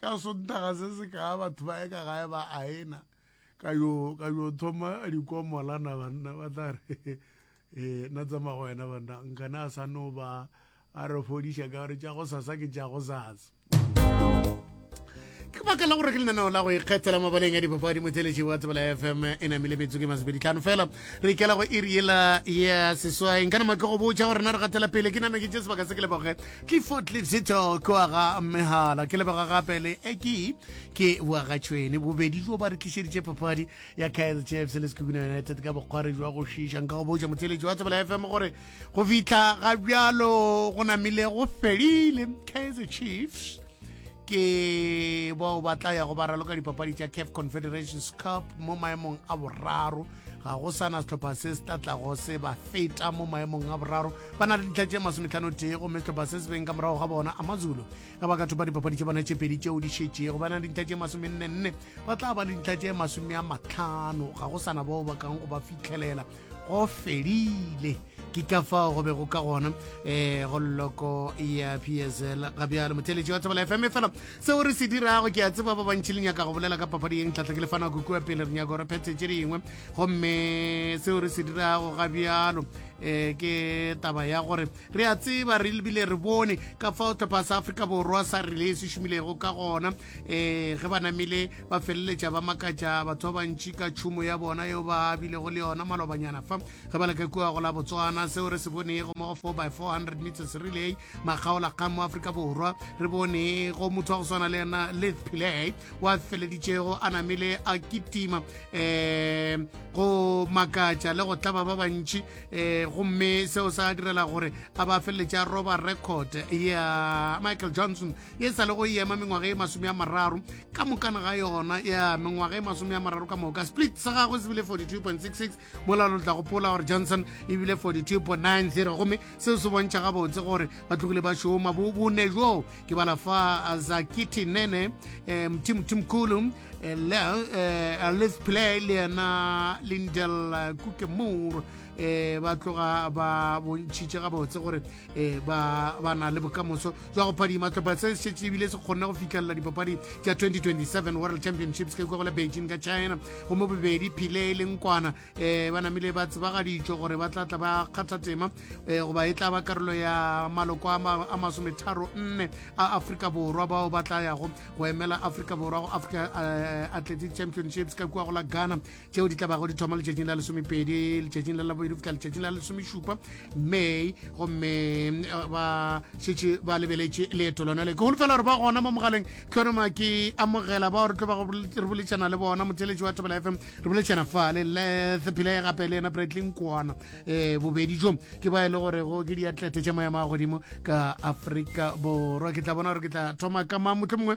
ka sontaga se se kaa batho ba ye ka gae ba aena ka yo ka yo thoma dikomola na banna ba tla re eh na tsama go wena banna nkana a sa no ba a re fodiša ka gore tša go sasa ke tša go sasa ke baka la gore ke lenaneo la go ikgethela mabaleng a dipapadi motheletši wa tsebela fm e namile metsoko e masebedi tlhano fela re ikela go iri ela ya seswaeng ka nama ke go botšha gore na re gatela pele ke name ke tše sebaka se ke leboge ke foot letsito ko aga megala ke lebega gape le eki ke boagatšhwene bobedi jo ba re tlišeditše papadi ya kaizer chiefs le sekukuna united ka bokgware jwa go šiša nka go botša motheletši wa tsebela fm gore go fitlha ga bjalo go namile go felile kaizer chiefs ke bao ba tla ya go ba raloka dipapadi tša caf confederations cup mo maemong a boraro ga go sana setlhopha se se tla tlago se ba feta mo maemong a boraro ba na le ditlha tše masometlhano tee gomme setlhopha se se beng ka morago ga bona amazulu ga ba ka thopa dipapadi tše bona tše pedi tšeo di šetšego ba na le ditlha tše masomennenne ba tla ba le ditlha tše masome a matlhano ga go sana bao ba kang go ba fitlhelela go fedile ke ka fao go be go ka gona um go loko ya psl ga bjalo motheletši wa tsebala fm fela seo re se dirago ke a tseba ba bantšhi le nyaka go bolela ka papadi yeng tlhatlha ke le fana kukua pele re nyako re phethe tše dingwe gomme seo re se dirago ga bjalo um ke taba ya gore re a tseba re lebile re bone ka fao tlhopha sa afrika borwa sa relay se šomilego ka gona um ge ba namile ba feleletša ba makatša batho ba bantši ka tšhumo ya bona yeo ba bilego le yona malobanyana fa ge ba leka kua go la botswana seo re se bonego mo go 4 by 400 meters relay makgaola kgang mo aforika borwa re bone go motho wa go swana le yena lith pile wa feleditšego a namile a kitima um go makatša le go tlaba ba bantši um gomme seo sa direla gore a ba feleletša roba record ya michael johnson ye sa le go ema mengwaga e masome a mararo ka mokana ga yona ya mengwaga e masome a mararo ka moka split sa gagwe se bile 42.66 mola lo tla gopola gore johnson e bile 42.90 gomme seo se bontšha gabotse gore ba tlogile ba šoma bone joo ke bala fa zakiti nene um tim timkulu um let's play le yena lindel kukemore um ba tloga ba bontšhitše gabotse gore e ba ba na le bokamoso jwa go phadima tlhopha se šetse ebile se kgonne go fitlhelela dipapadi tša 2027 world championships ke kwagole beijing ka china go mo bobedi phile e leng kwana um ba namile ba tsebagaditšwe gore ba tlatla ba kgatha tema um goba e tla ba karolo ya maloko a masometharo nne a afrika borwa bao ba tla yago go emela afrika borwa go africa eh, athletic championships ka kua go la ghana tšeo di tlabago di thoma letšatšing la lesomepedi letšatšing la labobedi go fihla letšatšing la lesomešupa may gomme eh, ba šetše ba lebeletše leeto lona le ke golofela gore ba gona mo mogaleng ke yone ma ke amogela bao re tlo ba re boletšana le bona motheletši wa tobela fm re boletšana fale lethephilae gape le ena bradley kwana um eh, bobedi jo ke ba e le gore go ke diatlete tša maemo a godimo ka aforika borwa ke tla bona gore ke tla thoma ka mang motlho mongwe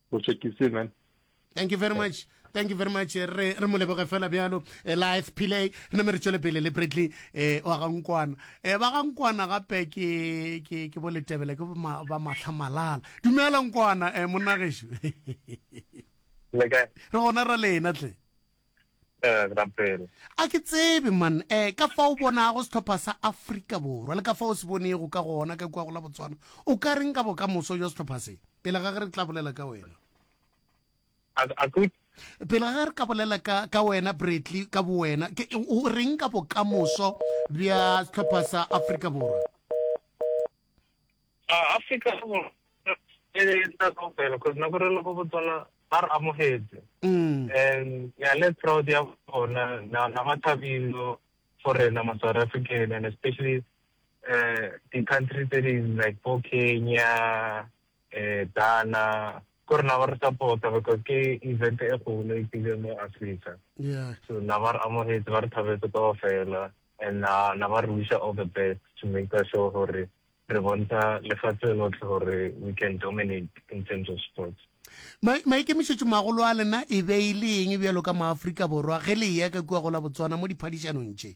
go tšekise man thank you very much thank you very much re re mo leboge fela bjalo eh, life pile re name re tšwele pele le bradley eh, wa gankwana eh, ba gankwana gape ke ke ke boletebele ke ma- ba mahla malala dumela nkwana eh, monnagešu re gona ra lena tle A ke tsebe man um ka fa o bonago sehlopha sa Afrika Borwa le ka fa o se bonego ka gona ka kua go la Botswana o ka reng ka bokamoso jwa sehlopha se pele ga ge re tla bolela ka wena pele ga ge re ka bolela ka ka wena Bradley ka bowena ke o reng ka bokamoso bja sehlopha sa Afrika Borwa Afrika Borwa e ne e tla kaofela because nako re le go Botswana ba re amogetse mm. and ya le proud ya bona na na ba thabilo for rena ma South African and especially uh the country that is like for Kenya eh Ghana ko rena ba re supporta because ke event e golo e tsile mo Africa yeah so na ba re amogetse ba re thabetse kaofela and na na ba re wish all the best to make sure gore Re bonta lefatse lotlhe gore we can dominate in terms of sports. Ma, maikemišetšomagolo a lena e be e le eng bjalo ka maafrika borwa ge le eya ka kua go la botswana mo diphadišanong tše?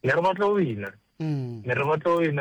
Ne re batla go wina. Mm. Ne re batla go wina.